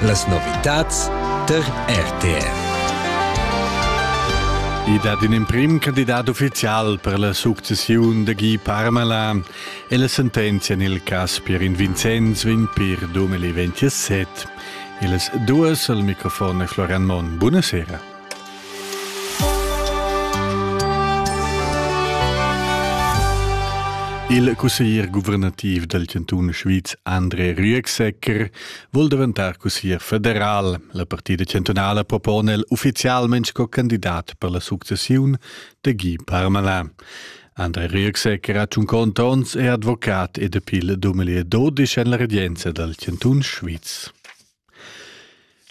Las novitads tar RTR. I dat in emprim candidat uffizial per la successiun da Guy Parmalin e la sentenzia en il cas Pierin Vincenz vegn per 2027. Ils duas al microfon è Florian Monn. Buonasera. Il cusseglier guvernativ dal chantun Schwyz André Rüegsegger vul daventar cusseglier federal. La partida chantunala propona el uffizialment sco candidat per la successiun da Guy Parmelin. André Rüegsegger ha tschunquont onns è advocat ed appeal duemila dodisch en la redienza dal chantun Schwyz.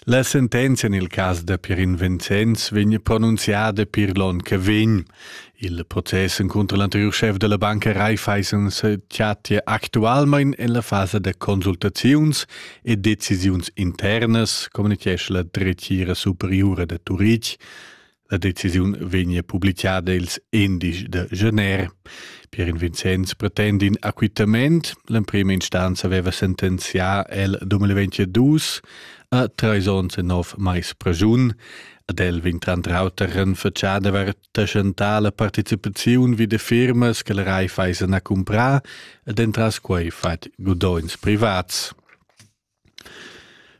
La sentenzia nel cas da Pierin Vincenz vegn pronunziada pir l'on che vegn. Il process encunter l'anteriur chef della banca Raiffeisens chattia actualmein en la fasa da consultaziuns e decisiuns internas, communichesce la dretgira superiura de Turitg. La decisiun vegnia publicada ils endisch da gener. Pierin Vincenz pretend in acquittament. L'emprima instanza aveva sentenzià el 2022 a treis onns e nov mais pregiun. Ad el vegn tranter auter renfatschà d'avair taxentà la participaziun vi da firmas che la Raiffeisen ha cumprà ed entras quai fatg gudogns privats.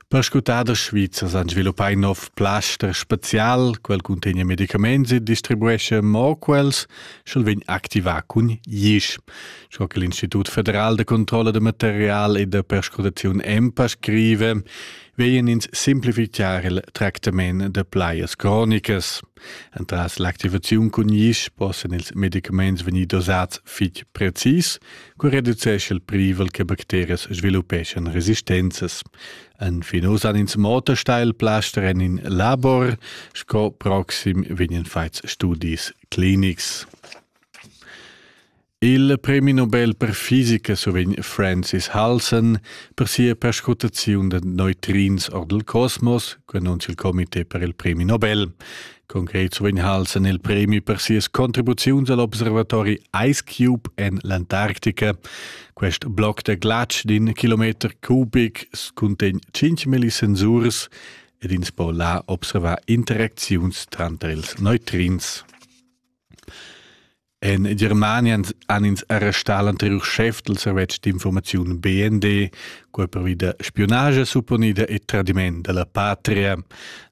Perscrutaders svizzers han sviluppà in nov plaster spazial, quel cuntegna medicaments e distribuescha mo quels, sch'el vegn activà cun isch. Sco che l'Institut federal da controlla da material e da perscrutaziun EMPA scrive, vegnan ins simplifitgar il tractament da plajas cronicas. Entras l'activaziun cun isch possan ils medicaments vegnir dosats fitg precis, co reducescha il privel che bacterias sviluppeschan resistenzas. En fin oz han ins Motorsteilplaster en in labor, sco proxim vegnan fatgs studis clinics. Il premi Nobel per fisica survegn Francis Halson per sia perscrutaziun da neutrins or dal cosmos, che annunzia il comité per il premi Nobel. Concret survegn Halson il premi per sias contribuziuns all'observatori Ice Cube en l'Antarctica. Quest bloc da glatsch d'in kilometer cubic cuntegn 5.000 sensurs ed ins po là observar interacziuns tranter ils neutrins. En Germania han ins arrestà l'anteriur chef dal servetsch d'informaziun BND, quel pervida spionage supponida e tradiment da la patria.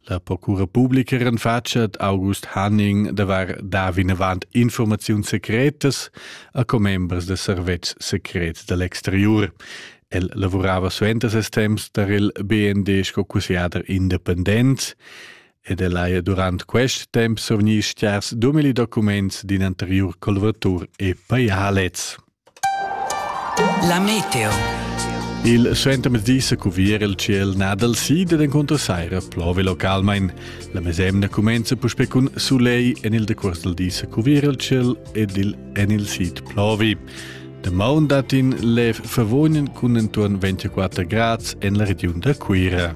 La procura publica renfatschet August Hanning davar da vinavant informaziun secretas a commembers da servetschs secrets da l'exterior. El lavorava suenter ses temps tar il BND sco cussegliader independent. ed el haja durant quest temp survgni stiars dumili documents d'in anteriur colvatur e pajà lez. La meteo. Il suentermezdi sa cuvier il ciel nadal sid ed encunter saira plove localmain. La mesemna cumenza puspè cun sulegl en il decuors dal di sa cuvier il ciel ed il, en il sid plovi. Damaun dat in lev favognen cun entuorn 24 grads en la regiun da Cuira.